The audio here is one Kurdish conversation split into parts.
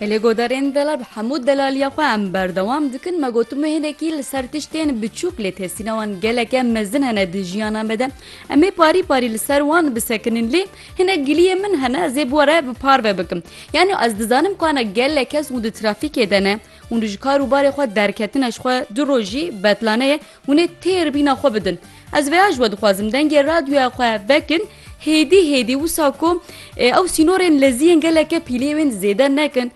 Em lê guhdarên vêla bi hemû delaliya xwe em berdewam dikin me gotimu hinekî li ser tiştên biçûk lê tesîna wan geleke mezin hene di jiyana me de em ê parî parî li ser wan bisekinin lê hinek giliyê min hene ez ê bi were bi parve bikim yanî ez dizanim ku hene gelek kes û di trafîkê de ne û ji kar û barê xwe derketine ji xwe du rojî betlaneye hûnê têr bîna xwe bidin ez vêya ji we dixwazim dengê radyoya xwe vekin Hêdî hêdî wisa ku ew sînorên lezî yên geleke pîlê wên zêde nekin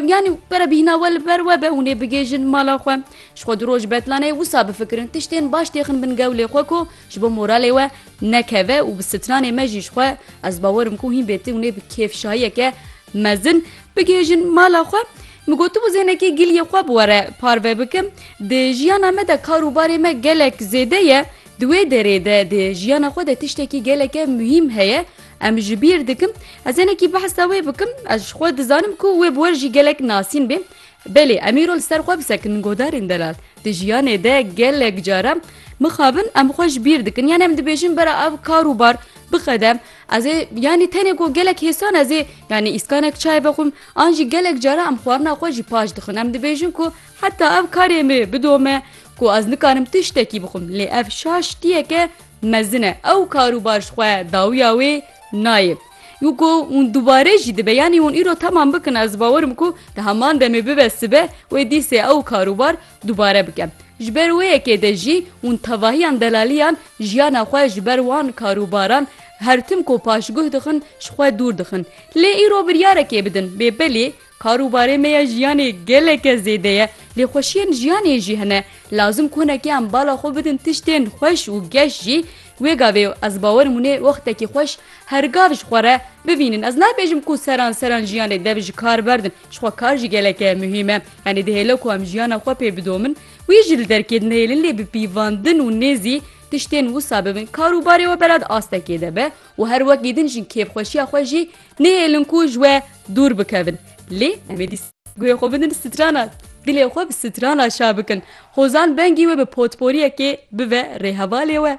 yanî pere bîhna we li ber webe hûnê bigêjin mala xwe ji xwe du roj betlanê wisa bifikirin tiştên baş têxin bin gewlê xwe ku ji bo moralê we nekeve û bi stranê me jî ji xwe ez bawerim ku hîn bêti hûnê bi kêfşahiyeke mezin bigêjin mala xwe Min gotu bu zênekê giliyê xwe bi were parve bikim. Di jiyana me de kar û barê me gelek zêde ye. Di wê derê de di jiyana xwe de tiştekî geleke muhîm heye em ji bîr dikim. Ez hinekî behsa wê bikim. Ez ji xwe dizanim ku wê bi we jî gelek nasîn bê. Belê em îro li ser xwe bisekin godarên delal. Di jiyanê de gelek cara mixabin em xwe ji bîr dikin yanî em dibêjin bera ev kar û bar bixedem. Ez ê yanî tenê ku gelek hêsan ez ê yanî îskanek çayê vexwim an jî gelek cara em xwarina xwe jî paş dixwin. Em dibêjin ku Heta ev karê me bidome ku ez nikarim tiştekî bixwim lê ev şaş tiyeke mezin e ew kar û bar ji xwe dawiya wê nayê. Yuko hûn dubare jî dibe yanî hûn îro temam bikin ez bawerim ku di heman demê bibe sibe wê dîsê ew kar û bar dubare bike. Ji ber wê yekê de jî hûn tevahiyan delaliyan jiyana xwe ji ber wan kar û baran her tim ku paşguh dixin ji xwe dûr dixin. Lê îro biryarekê bidin bê belê Kar û barê me ya jiyanê geleke zêde ye, lê xweşiyên jiyanê jî hene. Lazim konekê em bala xwe bidin tiştên xweş û geş jî. Wê gavê û ez bawerim hûnê wextekî xweş her gav ji xwe re bivînin. Ez nabêjim ku seran seran jiyanê dev ji kar berdin. Ji xwe kar jî geleke muhîm e. Yanî dihêle ku em jiyana xwe pê bidomin. Wî jî li derkê dinihêlin lê bi pîvandin û nêzî tiştên wisa bibin. Kar û barê we belat astekê de be û her wekî din jin kêfxweşiya xwe jî Nêhêlin ku ji we dûr bikevin. Lê em êdî guhê xwe bidin strana dilê xwe bi strana şa bikin. Hozan bengî we bi potporiyekê bive rêhevalê we.